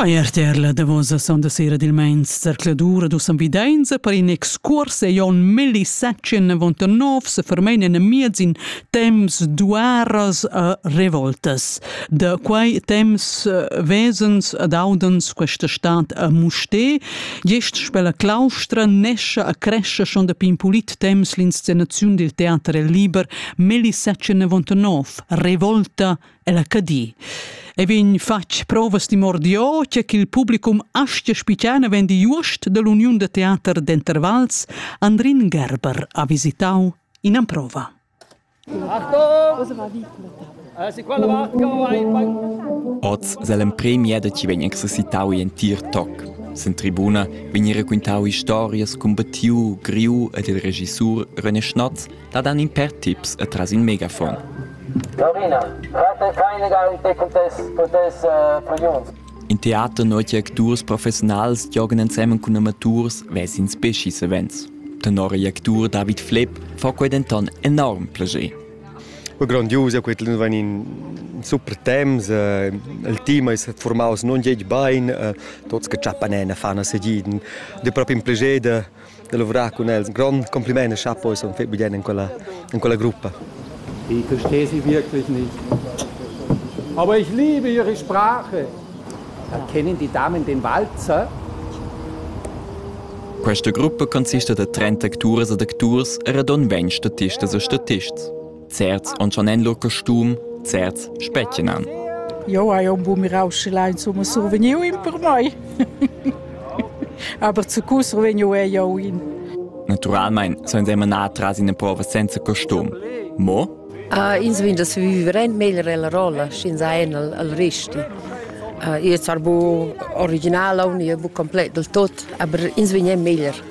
Quai è RTR la davosa sonda sera dil meins zercladur dus ambidenza per in excurs e Jon Melli Sachin 99 se fermein en miez in temps duaras a revoltas. Da quei temps eh, vesens ad audens questa stat a Muste, gest spella claustra nescia a crescia schon da pin pulit temps l'inscenaziun dil teater liber Melli Sachin 99, Revolta ella Cadi. E vegn fatg provas di mordio che il publicum astia spiciana vendi Just dell'Uniun de Teater d'Intervals Andrin Gerber ha visitau in amprova. Oz selem premia da ci vegn exercitau in tir toc. Sen tribuna vegn raquintau historias cun Battiu, Griu ed il regissur René Schnatz dat han in per tips e tras in megafon. Lorina, rate keine Garite contess, contess uh, priuns. In teater notia acturs professionals giogan ensemen cun amaturs vesin specis events. Tenor il actur David Flepp fa quei denton enorm plascher. Grondius, quei van in super temps, eh, il team è formaus non geg bain, eh, tots che ciappan en fan a segiden, de proprio un piacere da lavorar cun els. Ein grond compliment e chapo sun fetg bien in quella, in quella gruppa. Ich verstehe sie wirklich nicht. Aber ich liebe ihre Sprache. Kennen die Damen den Walzer? Questa gruppa consiste da 30 acturs ed acturs e radon 20 statistas e statists. Certs on schon en lur costum, certs spetgenan. Jo hai un bu mirau sche la insomma survegniu in per mai. Aber zu cu survegniu è jo in. Naturalmente sono immer nah tras in prova senza costum. Mo? Uh, ins vin das viverent meglio la rolla, sch'ins ha en al, al risti. Uh, io sar bu original, io bu complet del tot, aber ins vin è meglio.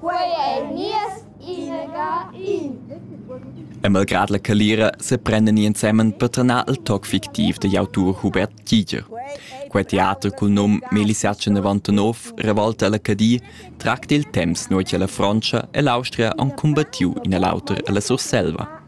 Quei ei nies inaga in. E malgrad la calira seprendan ni ensemen per trenar il toc fictiv digl autur Hubert Giger. Quei teater cul num Melisatge 99 revolta ella Cadi tracta il temps nua che la Frontscha e l'Austria han cumbattiu in e l'auter alla Surselva.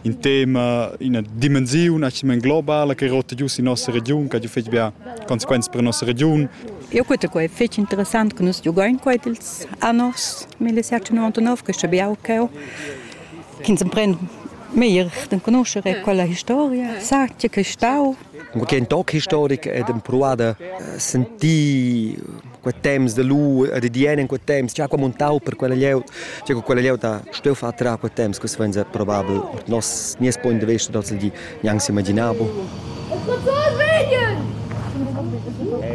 In tema, ina dimensiun globala che rota giu sin nossa regiun, che fetg bia consequenze per nossa regiun. Eu cuta quai fich interessant che nus giugain quai ils anors 1799 che biau ch'eu chi'ns empren meglier d'enconuscher e quella historia sa che che stau Come che in toc historic ed proada sentir quei temps de lu e de dien in quei temps già come un tau per quella lieut già quella lieut ha steu fa tra quei temps que svenza probabel nos nies point de vista tots di Gnanc s'imaginavo.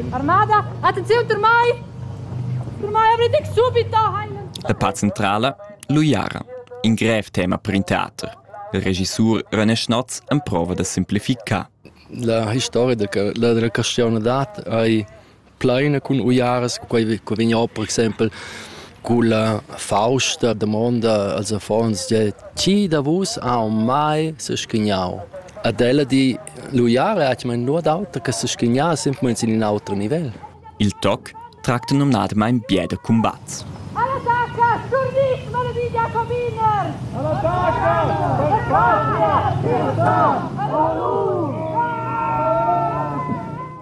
Armada, attenziun per mai! Per mai avrei detg subito heilen. La part centrala, l'uiara, in grev tema per in teater. Il regissur René Schnotz emprova da simplificar. La historia da la castione d'at ei plaina cun uiaras, quei co vegn or per exempel culla fausta damonda als affons e di chi da vus ha mai s'schignau. Ed ella di l'uiara ha mai nuot auter che s'schignar simplamain sin in auter nivel. Il toc tracta numnadamain bia da cumbats. Alla taca, turnit, malaviglia cominer! Alla taca, per patria, libertà, allora!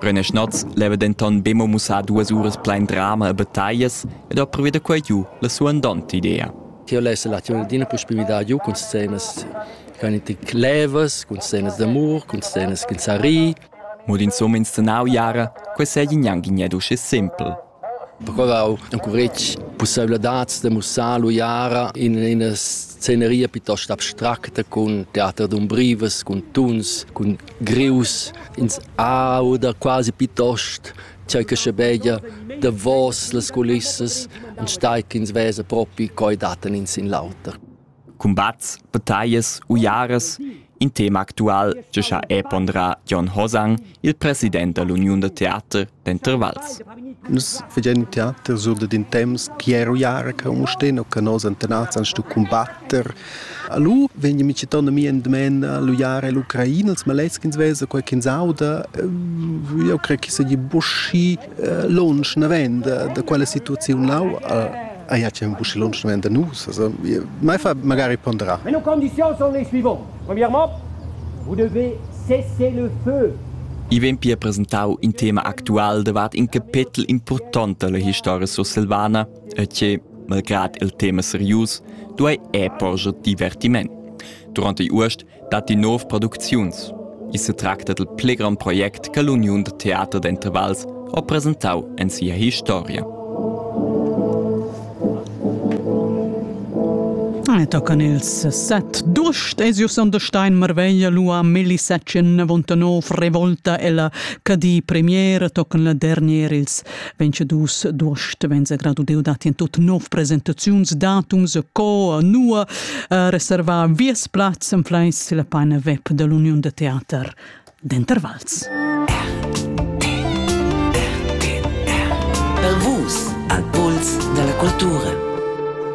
René Schnotz leva denton be mo mussar duas uras plein drama e battaglias ed ha pruvi da quei giu la suandonta idea. Ti less la tiun d'ina pussibilitad giu cun scenas cun levas, cun scenas d'amur, cun scenas che sa ri. Mo d'insomma inscenau jara, quei sei gnanc gned uschè simpel. Procurau encuretg pusseivladads da mussar l'uiara in ina sceneria piuttost abstracta cun teater d'umbrivas, cun tuns, cun grius. Ins auda quasi piuttost tgei che schebeglia davos las culissas, enstagl ch'ins vesa propi co ei dattan in sin l'auter. cumbats, battaglias, uiaras. In tema actual che ha è ponderà Jon Hosang, il president dall'Uniun da teater Denter Vals. Nus fagein teater sur da din temps chi è uiara che un sten o che nos antenats an stu combatter. Alu vegn mi citon a mi en dmen l'uiara e l'Ucraina, els maleschins vesa qualche sauda, eu cre che se gli buschi lunsch naven da, da quella situaziun lau a ja c'è un busci lunsch naven da nus also mai fa magari ponderar Mais nos conditions sont les suivantes premièrement vous devez cesser le feu I vegn pia presentau in tema actual davart in capetel important dalla historia sursilvana e che, malgrad il tema serius, duei è porscher divertiment. Durante Urst datti nov producziuns. I setracta dal pli grond project che l'uniun da teater d'Intervals ha presentau en sia historia. Tocan ils set dust e sur Sonderstein Marveglia lua Melisacin vontanov revolta ella Cadi premier tocan la dernier ils vegn dus d'ost venza gradudeu dat in tut nov presentaziuns datums co nua uh, reservar vies plaz en fleis la paina web dell'Union de Theater d'Intervals. Per vus, al puls della cultura.